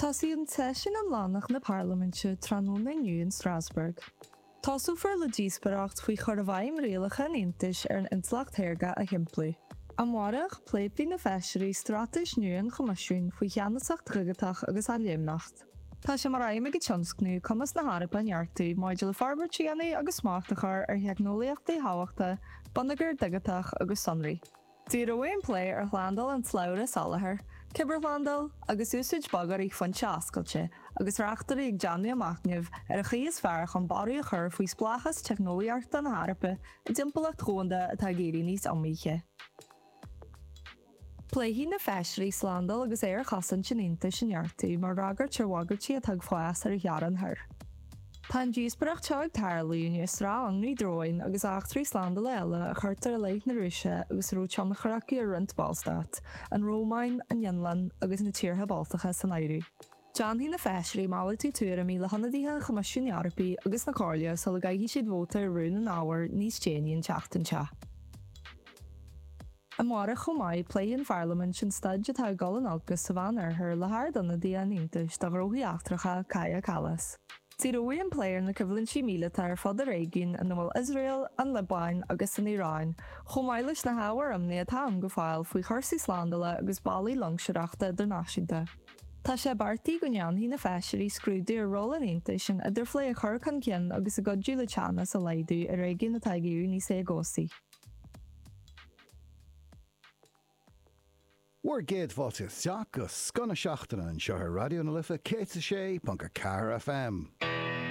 Tosaíonn seisiún iomlánach na Parlaiminte tráthnóna inniu in Strasbourg. Tosófar le díospóireacht faoi chur i bhfeidhm rialacha an Aontais ar an intleacht shaorga a shimpliú. Amárach, pléifidh na Feisirí straitéis nua an Choimisiúin faoi cheannasacht dhigiteach agus athléimneacht. Tá sé mar aidhm ag an tionscnamh cumas na hEorpa a neartú maidir le forbairt a dhéanamh agus smacht a chur ar theicneolaíochtaí thábhachtacha bonneagar digiteach agus sonraí. Díreoidh an plé ar shlándáil an tslabhra soláthair, cibearshlándáil agus úsáid bogearraí foinse oscailte agus reachtairí ag déanamh a machnaimh ar an chaoi is fearr chun barraí a chur faoi spleáchas teicneolaíochta na hEorpa i dtimpeallacht dhomhanda atá ag éirí níos iomaíche. Pléifidh na Feisirí slándáil agus aerchosaint an Aontais a neartú mar fhreagairt ar bhagairtí atá ag fás ar a theorainn thoir. Tá an díospóireacht seo ag tarlú i ndiaidh sraith ionraí dróin agus eachtraí slándála eile a chuirtear i leith na Rúise agus a raibh tionchar acu ar roinnt Ballstát, an Rómáin, an Fhionlainn agus na tíortha Baltacha san áireamh. Déanfaidh na Feisirí malartú tuairimí le hionadaithe an Choimisiúin Eorpaigh agus na Comhairle sula gcaithfidh siad vóta ar rún an ábhair níos déanaí an tseachtain seo. Amárach chomh maith, pléifidh an Pharlaimint an staid atá ag dul in olcas sa Mheán-Oirthear le hArdionadaí an Aontais do Ghnóthaí Eachtracha, Kaja Kallas. Díreoidh an plé ar na coimhlintí míleata ar fud an réigiúin ina bhfuil Iosrael, an Liobáin agus an Iaráin, chomh maith leis na hábhair imní atá ann go fóill faoi chúrsaí slándála agus bealaí loingseoireachta idirnáisiúnta. Tá sé beartaithe go ndéanfaidh na Feisirí scrúdú ar ról an Aontais in idirphlé a chur chun cinn agus i gcuidiú le teannas a laghdú i réigiún atá ag éirí níos éagobhsaí. Bhur gcéad fáilte isteach go Scoth na Seachtaine anseo ar Raidió na Life 106.4 FM.